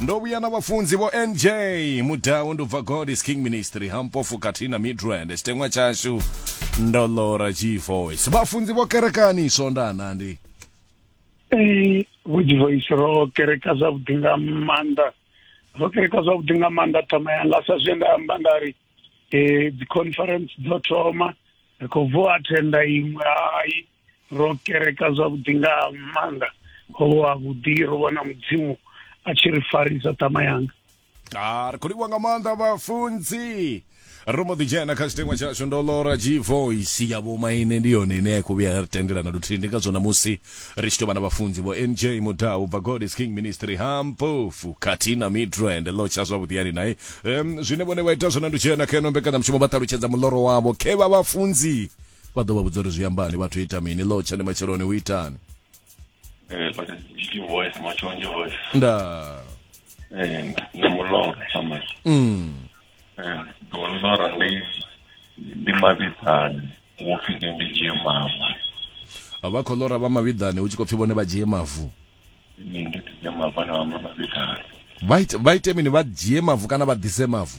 ndo vhuya na vhafunzi vho nj mudau ndi ubva god is king ministry hampofu khathihi na midrand tshiteṅwa tshashu ndo lora g voice vhafunzi vho kerekani swondana ndi Eh, Vhuji Voice ro kereka zwavhuḓi nga maanḓa ro kereka zwavhuḓi nga maanḓa thoma yanga sa zwe nda amba nda ri eh, dzi conference dzo thoma ri khou bvo attenda iṅwe hai ro kereka zwavhuḓi nga maanḓa ho vha vhuḓi ro vhona mudzimu a tshi ri farisa tama yanga a ri khou livhuwa nga maanḓa vhafunzi ro mbo ḓi dzhena kha tshitengwa tshashu ndo lora g voice ya vhomaine ndi yone ine ya khou vhuya ya ri tendela na luthihi ndi ngazwo namusi ri tshi tou vha na vhafunzi vho nj mudau bva god is king ministry hampofu khathihi na midrand lo tsha zwavhuḓi yani naye um, zwine vhone vha ita zwone ndi u dzhena kha ino mbekanyamushumo vha ṱalutshedza muloro wavho khe vha vhafunzi vha ḓo vha vhudza uri zwi ambani vhathu ita mini lo tshani matsheloni u itani eh, nda eh, na mulora sama mm eh, mulora ndi ndi mavhidzani wo pfhi ndi dzhie mama vha khou lora vha mavhiḓani hu tshi khou pfhi vhone vha dzhie mavu vha ite mini vha dzhie mavu kana vha ḓise mavu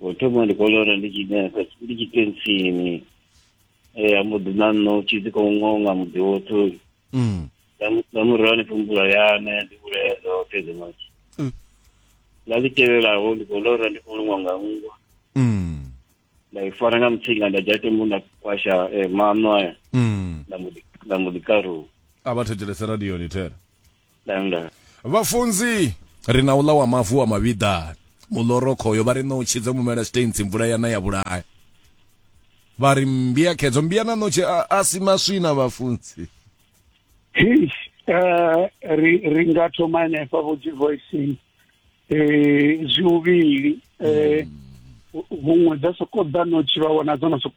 u thoma ndi kolora ndi tshi nesa ndi tshi tensini eh ambo ḓi na nno tshi dzi khou ngonga muḓi woṱhe uyu Mm. nga mu- nga murahu hanefho mvula yana ya ḓi vhulaya dzoṱhe dzi matshi Mm. ḽa ḽi tevhelaho ndi khou lora ndi khou luṅwa nga nngwa Mm. nda i fara nga mutsinga nda dzhia tombo nda kwasha eh, maṋo aya Mm. nda mbo ḓi- nda mbo ḓi karuwa a vha thetshelese radioni thera Danga. vhafunzi ri na uḽa wa mavu wa mavhiḓani mulorokhoyo vha ri ṋotshi dzo mumela sitensi mvula yana ya vhulaya vha ri mmbia khedzo mmbia na ṋotshi a, a si maswina vhafunzi Hish, eh, ri ri nga thoma hanefha vho dzi voicing eh zwivhili eh huṅwe dza soko ḓa no tshi vha wana dzo no soko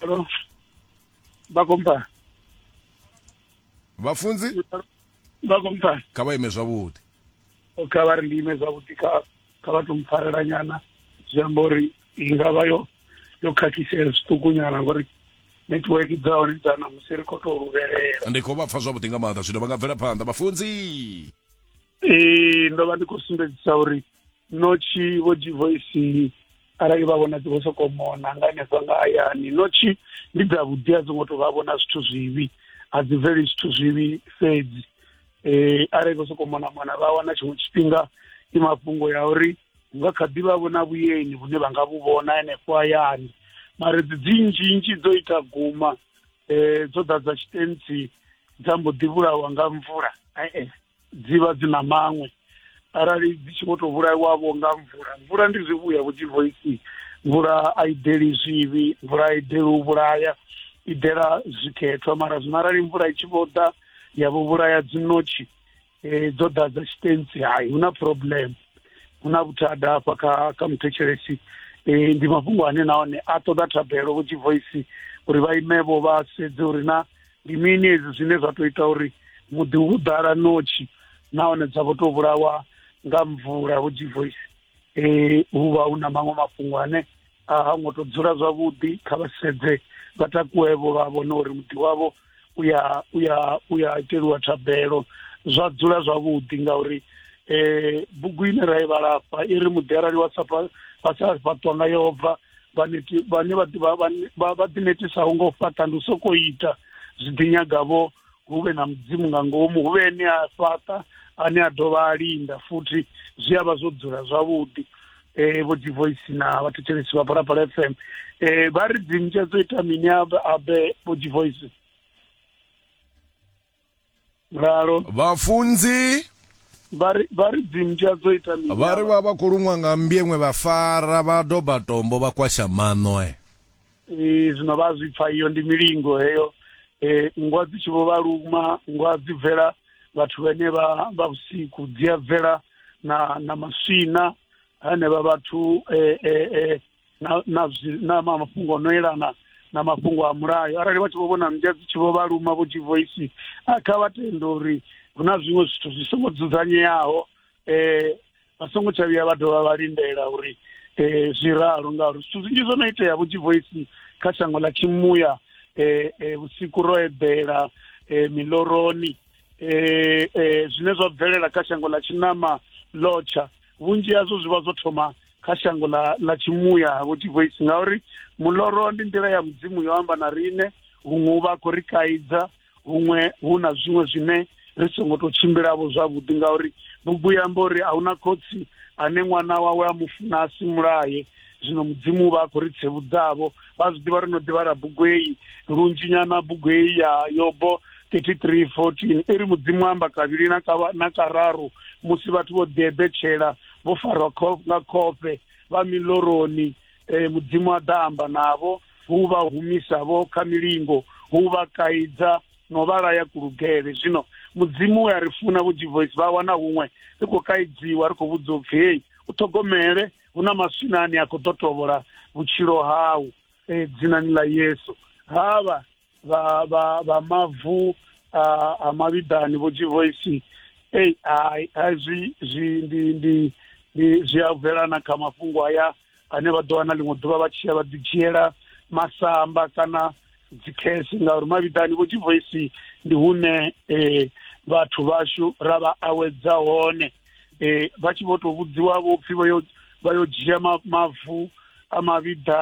Hello. Bakompa. vhafunzi Bakompa. kha vha ime zwavhuḓi Kha vha ri ndi ime zwavhuḓi kha kha vha to mpfarela nyana zwi amba uri i nga vha yo yo khakhisea zwiṱuku nyana ngori network dza hone dza ṋamusi ri khou tou luvhelela. ndi khou vha pfa zwavhuḓi nga maanḓa zwino vha nga bvela phanḓa vhafunzi Ee ndo vha ndi khou sumbedzisa uri notshi vho divoisi arali vha vhona dzi vho sokou mona nga henefha nga hayani notshi ndi dza vhuḓi a dzi ngo to vha vhona zwithu zwivhi a dzi bveli zwithu zwivhi fhedzi um arali vho sokou mona mona vha wana tshiṅwe tshifhinga i mafhungo ya uri hu nga kha ḓi vha vhona vhuyeni vhune vha nga vhu vhona henefho hayani mara dzi dzi nzhinzhi dzo ita guma um dzo ḓadza tshitentsi dza mbo ḓi vhulawa nga mvula e-e dzi vha dzi na maṅwe arali dzi tshi vho tou vhulaiwavho nga mvula mvula ndi zwivhuya vho dzivoisi mvula a i deli zwivhi mvula a i deli u vhulaya i dela zwikhethwa mara zwino arali mvula i tshi vho ḓa ya vho vhulaya dzinotshi um dzo ḓa dza tshitensi hai hu na problem hu na vhuthada hafha kha kha muthetshelesi um ndi mafhungo ane nahone a ṱoḓa thabelo vho dzivoisi uri vha imevho vha sedze uri na ndi mini hezwi zwine zwa tou ita uri muḓi hu ḓala notshi nahone dza vho tou vhulawa nga mvula vho G-Voice um hu vha hu na maṅwe mafhungo ane a ha ngo tou dzula zwavhuḓi kha vha sedze vha takuwevho vha vhone uri muḓi wavho u ya u ya u ya iteliwa thabelo zwa dzula zwavhuḓi ngauri um bugu ine ra i vhala afha i ri muḓi arali wa sa wa sa fhaṱwa nga yehova vhane vha ḓinetisaho nga u fhaṱa ndi u sokou ita zwi ḓi nyagavho hu vhe na mudzimu nga ngomu hu vhe ene a fhaṱa ane a dovha a linda futhi zwi a vha zwo dzula zwavhuḓi um vho divoice na vhathetshelesi vha phalaphala f m um vha ri dzinzhe dzo ita mini abe vho divoice ralo vhafunzi vha ri- vha ri dzimmbwa dzo ita mini vha ri vha vha khou luṅwa nga mmbieṅwe vha fara vha doba tombo vha kwasha maṋo e Eh, zwino vha zwi pfa iyo ndi milingo heyo Eh, nngwa dzi tshi vho vha luma nngwa dzi bvela vhathu vhene vha vha vhusiku dzi a bvela na na maswina hanevha vhathu eh, eh, eh, na na zwi- na ma- mafhungo o no elana na mafhungo a mulayo arali vhathu vho vhona mmbwa dzi tshi vho vha luma vho divoisi a kha vha tende uri hu na zwiṅwe zwithu zwi songo dzudzanyeaho eh vha songo tsha vhuya vha dovha vha lindela uri eh zwi ralo ngauri zwithu zwinzhi zwo no itea vho divoisi kha shango ḽa tshimuya eh eh, vhusiku ro eḓela eh miloroni eh eh zwine zwa bvelela kha shango ḽa tshinama lotsha vhunzhi hazwo zwi vha zwo thoma kha shango ḽa ḽa tshimuya vho divoisi ngauri muloro ndi nḓila ya mudzimu yo amba na rine huṅwe u vha a khou ri kaidza huṅwe hu na zwiṅwe zwine ri songo tou tshimbilavho zwavhuḓi ngauri bugu ya amba uri a hu na khotsi ane ṅwana wawe a mu funa a si mulaye zwino mudzimu u vha a khou ri tsevhudzavho vha zwi ḓivha ri no ḓivhala bugu heyi lunzhi nyana bugu heyi ya yobo 33 14 i ri mudzimu amba kavhili na kararu musi vhathu vho ḓieḓetshela vho farwa nga khofhe vha miloroni eh, mudzimu a ḓa amba navho hu vha humisa vho kha milingo hu vha kaidza no vha laya kulugele zwino mudzimu we a ri funa vho divoice vha wana huṅwe ri khou kaidziwa ri khou vhudzwa upfi hei u ṱhogomele hu na maswina ane a khou ḓo tovhola vhutshilo hau eh, dzinani ḽa yesu havha vha vha vha mavu a a mavhiḓani vho dzivoisi ei hai hai zwi zwi ndi ndi ndi zwi a bvela na kha mafhungo haya ane vha ḓo wana ḽiṅwe ḓuvha vha tshi ya vha ḓi dzhiela masamba kana dzikhesi ngauri mavhiḓani vho dzivoisi ndi hune eh, vhathu vhashu ra vha awedza hone eh, vha tshi vho tou vhudziwa vho pfhi vha yo vha yo dzhia ma- mavu a mavhiḓa